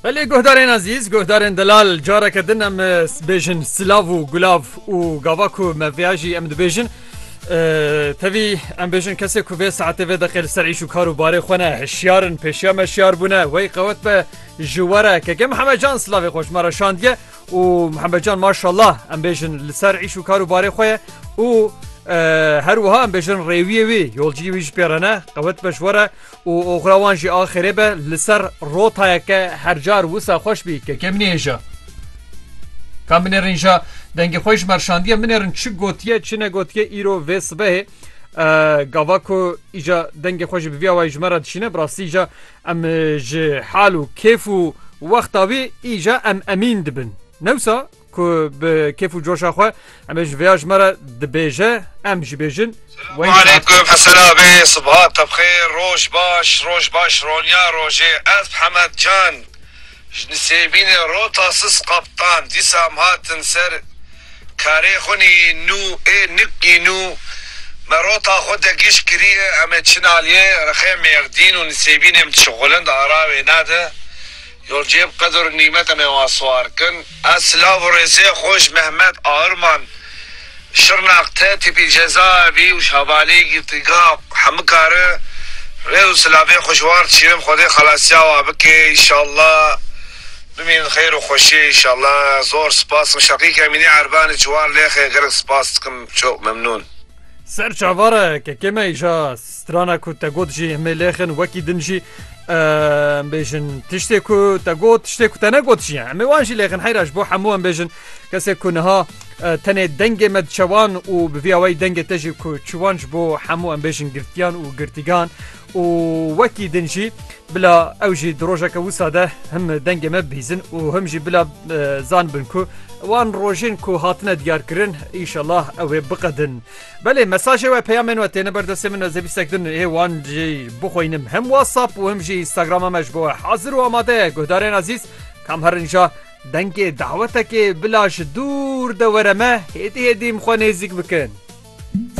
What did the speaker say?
Belê guhdarên ezîz, guhdarên delal careke din em bêjin silav û gulav û gava ku me vêya jî em dibêjin. Tevî em bêjin kesê ku vê saetê vê deqê li ser îş û kar û barê xwe ne hişyarin pêşiya me şiyar bûne wey qewet be ji were keke Mihemed Can silavê xweş me re şandiye û Mihemed Can maşallah em bêjin li ser îş û kar û barê xwe ye û her wiha em bêjin rêwiyê wî yolciyê wî ji pêrene qewet be ji were. Û oxira wan jî axirê be li ser rotayeke her car wisa xweş bî kekê min ê hêja. Ka min êrin ja dengê xwe ji merşandiye min êrin çi gotiye çi negotiye îro vê sibehê gava ku îja dengê xwe jî bi vî awayî ji me re dişîne bi rastî îja em ji hal û kêf û wexta wî îja em emîn dibin. Newsa Ku bi kêf û coşa xwe em ê ji vêya ji me re dibêje em jî bêjin. Aleykum esela bê subha te bi xêr roj baş roj baş ronya rojê ez bi Hemed can ji nisêbînê rota sis qaptan dîsa em hatin ser karê xwe nî nû ê nik nî nû me rota xwe de gîş kirîye em ê çin aliyê rexê mêrdîn û nisêbînê em dişixulin di ara wêne de Your cêb qedir nîmet em ê wan siwar kin. Ez silav û rêzê xwe ji Mehmet Airman, Şirnak, te tîpî cezaevî û ji hevalî girtîgeha Hemika re rêz û silavê xwe ji wan re dişînim Xwedê xelasiya wan bike înşallah bimînin di xeyr û xweşiyê înşallah zor sipas dikim Şeqîk Emînî Erbani ji wan lêxê gelek sipas dikim çok memnûn. Ser çavara kekê me îja Strana ku te got jî himê lêxin wekî din jî em bêjin tiştê ku te got tiştê ku te negot jî hemê wan jî lêxin heyra ji bo hemû em bêjin kesê ku niha tenê dengê me diçewan û bi vî awayî dengê te jî ku çiwan ji bo hemû em bêjin girtiyan û girtîgan û wekî din jî bila ew jî di rojeke wisa de him dengê me bîzin û him jî bila zanbin ku wan rojên ku hatine diyarkirin îşellah ew ê biqedin. Belê mesajê we peyamên we têne ber destê min ez ê bîstek din ê wan jî bixwînim him WhatsApp û him jî Instagrama me ji bo we hazir û amade ye guhdarên ezîz kam her inja dengê dawetekê bila ji dûr de were me hêdî hêdî min xwe nêzîk bikin.